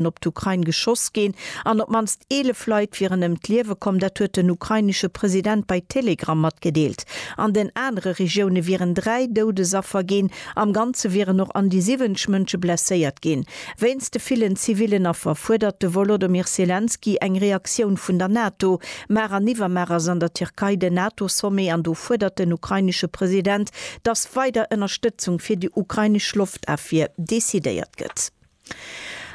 Rakéiten op d'Ukrain geschoss ginn an op d'mannst 11 Leit wieren ëm d'Liewe komm. Dat huet den ukrainesche President bei Telegram matgedeelt. An den anere Regioune wieren dräi Doudesaffer ginn. Am Ganze wieren och an déi 70 Mënsche blesséiert ginn. Wéinst de villen zivillen Affer fuerdert de Wolodomyr Selenskyj eng Reaktioun vun der NATO. Mar an iwwermar ass an der Tierkei den NATO-Sommet an do fuerdert den ukrainesche President, datt weider Ënnerstëtzung fir déi ukrainesch Loftafwier decidéiert gëtt.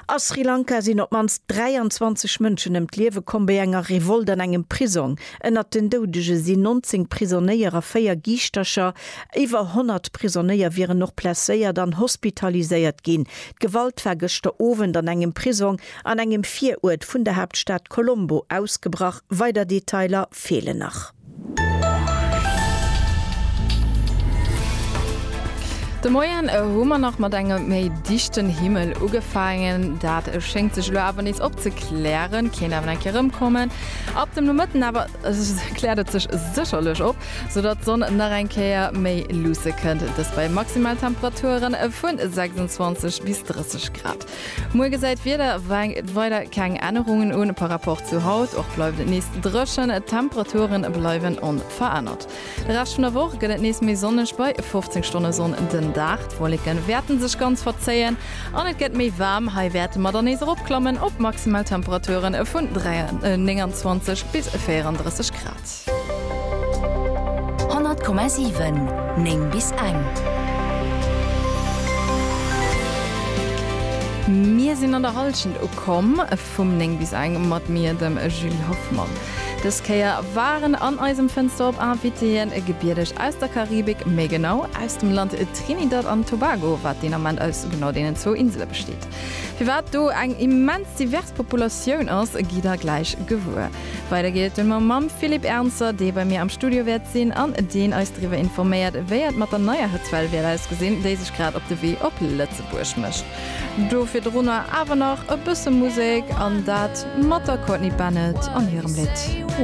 A Sri Lanka sinn op d'mannst 23 Mënschen ëm d'Liewe komm bei enger Revolt an engem Prisong. Ënnert den Doudege sinn 19 Prisonnéier a véier Giischtercher. Iwwer 100 Prisonnéier wieren och blesséiert an hospitaliséiert ginn. D'Gewalt war gëschter Owend an engem Prisong an engem Viruert vun der Haaptstad Colombo ausgebrach. Weider Detailer feelen nach. De Moien hu mer nach mat engem méi dichten Himmel ugefaangen. Dat schéngt sech elo awer nees opzeklären, kéint awer eng Kéier erëmkommen. Ab dem Nomëtten awer kläert et sech sécherlech op, soudatt d'Sonn nach eng Kéier méi luusse kënnt, dëst bei Maximaltemperaturen vu 26 bis 30 Grad. Muer gesäit d'Wieder weider keng Ännerungen un par Rapport zu haut. Och bleift et nees dréchen, d'Temperature bleiwen onverännert. De Rescht vun der Woch gëtt et nees méi sonneg, bei 15 Stonne Sonn den Dag. D'Wolleke wäerte sech ganz verzéien an et gëtt méi waarm. Hei wäerte mer dann nees eropklammen op maximal Temperature vun 29 bis 34 Grad. 100,7 9 bis eng. Mir sinn an der Hallschent ukomm vum 9 bis eng mat mir, dem Julie Hoffmann. Dës Kéier waren an eisem Fënster op Invitéeën Gebiedeg aus der Karibik, méi genau aus dem Land Trinidad an Tobago, wat deen Ament aus genau deenen zwou Insele besteet. Firwat do eng immens divers Populatioun ass, gitt der gläich gewuer. Weider geet et dunn mar mam Philippe Ernzer, dee bei mir am Studio wäert sinn an deen eis driwwer informéiert, wéi et mat der neier Hetzwell wäert ausgesinn, déi sech grad op de Wee op Lëtzebuerg mécht. Do virdrunner awer nach e bësse Musek, an dat mat der Courtney Bennett an hirem Lidd.